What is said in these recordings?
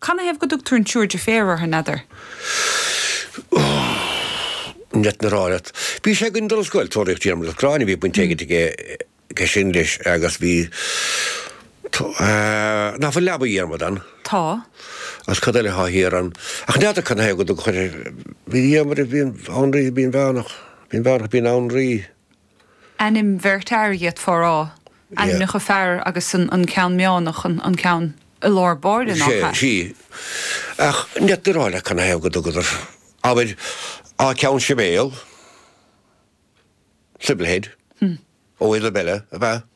Canathaobh go dtugtar an Triúr Deirféar orthu, n'fheadar? Ní fhéadfainn a rá leat. Bhí sé againn ag dul ar scoil, Tóraíocht Dhiarmada agus Ghráinne, bhí baint éigin aige aige sin leis agus bhí Tó Ná fuil Leaba Dhiarmada ann? Tá. Agus cad eile athá thiar ann? Ach n'fheadar canathaobh go dtugtar Binn Diarmada, Binn Hanraí, an Bhinn Mheánach, Binn Mheánach, Binn Hanraí. Ainm bheirt fhear iad fá rá, ainmneacha fear agus an ceann meánach, an ceann i lár báire, nach ea? Sea. Ach ní fhéadfainn a rá leat canathaobh go dtugadar, abair, Á Ceann Sibéal, Sybil Head, ó Isabella, ab ea?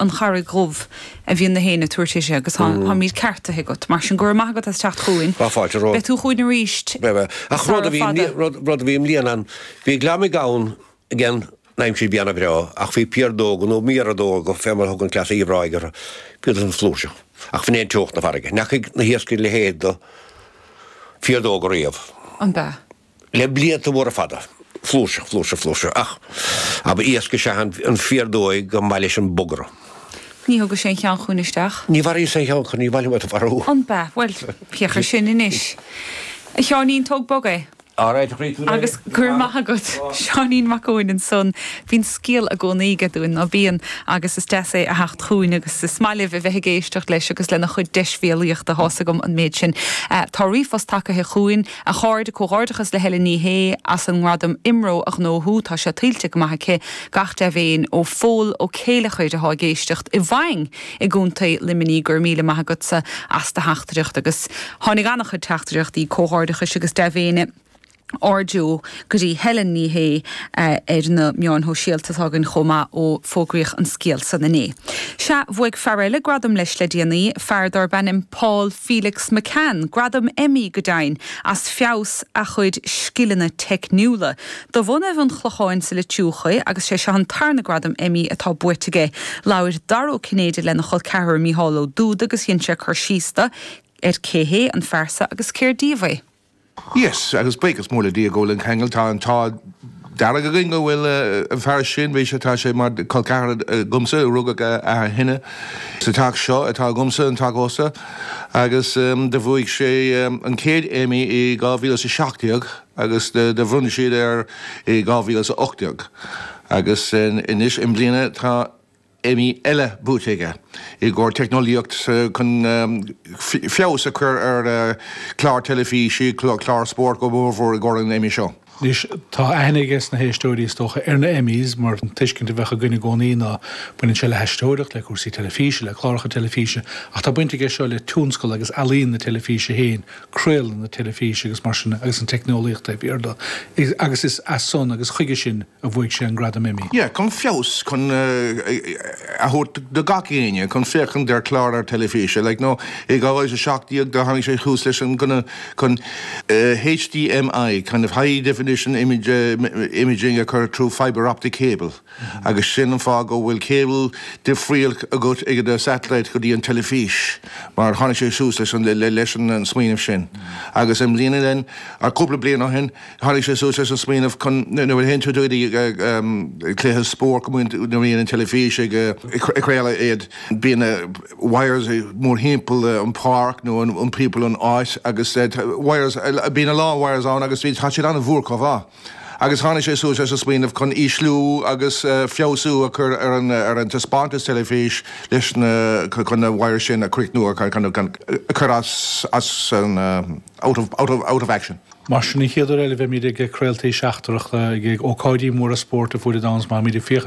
an Charraig Dhubh a bhíonn na héin ag tabhairt uirthi agus táimid ceartaithe agat. Mar sin, go raibh maith agat as teacht chugainn. Tá fáilte romhat. Beidh tú chugainn arís sara fada. Ach rud a bhí i mbliana, bhí gliomaigh ann ag an aimsir a bheith ana-bhreá ach bhí piardóga nó méardóga, fé mar a thugann cleas Uíbh Ráthaigh orthu, bhíodar san flúirseach. Ach ab in é an teocht na farraige. N'fheacaigh na hiascairí a leithéid de phiardóga riamh. Ab ea? le blianta móra fada. Flúirseach, flúirseach, flúirseach. Ach ab é iasc is ea an phiardóig go mba mhaith leis an bogaradh. Ní thugas aon cheann chugainn isteach. Ní mharaíos aon cheann acu, ní mhaith liom iad a mharú. Ab ea? Bhuel, féach air sin anois. A Sheáinín, tóg bog é. All right, a chréatúir. Agus go raibh maith agat, Seáinín Mac Eoin, ansan. Bíonn scéal i gcónaí aige dúinn, ná bíonn? Agus is deas é a theacht chugainn agus is maith libh a bheith ag éisteacht leis agus lena chuid deisbhéalaíochta. Tá a fhios agam an méid sin. Tá ríomhphost tagaithe chugainn. A chairde, comhghairdeachas le Helen Ní Shé as an ngradam Imro a ghnóthú, tá sé tuillte go maith aici gach dea-mhéin ó Phól Ó Céilleachair athá ag éisteacht i bhFaing i gContae Luimnigh. Go raibh míle maith agatsa as do theachtaireacht agus tháinig an-chuid teachtaireachtaí comhghairdeachais agus dea-mhéine ar ndóigh. go dtí Helen Ní Shé ar na meáin shóisialta atá againn chomh maith ó fógraíodh an scéal san inné. Sea, bhuaigh fear eile gradam leis le déanaí, fear darb ainm Paul Felix McCann, gradam Emmy, go deimhin, as feabhas a chuid scileanna teicniúla. De bhunadh an Chlocháin sa Leitriúch é agus sé seo an tarna gradam Emmy atá buaite aige. Labhair Dara Ó Cinnéide lena chol ceathrar Micheál Ó Dubhda agus dhein sé cur síos dó ar cé hé an fear so agus cér díobh é. Yes, agus buíochas mór le Dia go bhfuil an ceangal, tá an t-ádh dearg againn go bhfuil an fear sin, bhí sé, tá sé mar col ceathar agamsa, rugadh a athair shine sa teach seo atá agamsa, an teach ósta, agus do bhuaigh sé an chéad Emmy i 2017 agus do bhronn siad air i 2018 agus anois i mbliana tá. Emmy eile buaite aige i gcomhair teicneolaíocht chun feabhas a chur ar cláir teilifíse, cláir spóirt go mór mhór i gcomhair an Emmy seo. Anois, tá aithne aiges na héisteoirí, is dócha, ar na Emmys mar an tuiscint a bheadh againn i gcónaí ná baineann sé le haisteoireacht, le cúrsaí teilifíse, le cláracha teilifíse. Ach tá baint aige seo le tionscal agus ealaíon na teilifíse féin, craoladh na teilifíse agus mar sin agus an teicneolaíocht taobh thiar de. Agus is as san agus chuige sin. a bhuaigh sé an Gradam Emmy. yeah chun feabhas chun a thabhairt do gach éinne chun féachaint ar chlár ar teilifíse like no i 2017 do tháinig sé suas leis an smaoineamh chun HDMI kind of high definition image imaging a chur through fibre optic cable agus sin an fáth go bhfuil cable difrial agat ag do satellite go dtí an teilifís mar tháinig sé suas leis an leis an smaoineamh sin agus i mbliana nó cúpla bliain ó shin Tháinig sé suas leis an smaoineamh chun, nuair a fhéachann tú ar cluiche spóirt go minic nuair a bhíonn an teilifís ag craoladh iad, bíonn na wires mórthimpeall an pháirc nó timpeall an áit agus wires, bíonn a lán wires ann agus tá siad an-mhór chomh mhaith. Agus tháinig sé suas leis an smaoineamh chun ísliú agus feabhsú a chur ar an taispeántas teilifís leis na, chun na wires sin a chríochnú, a chur as an. Out of, out of, out of action. Mar sin, an chéad uair eile a bheimid ag craoltaí seachtrach ag ócáidí móra spóirt ar fuaid an domhain is má.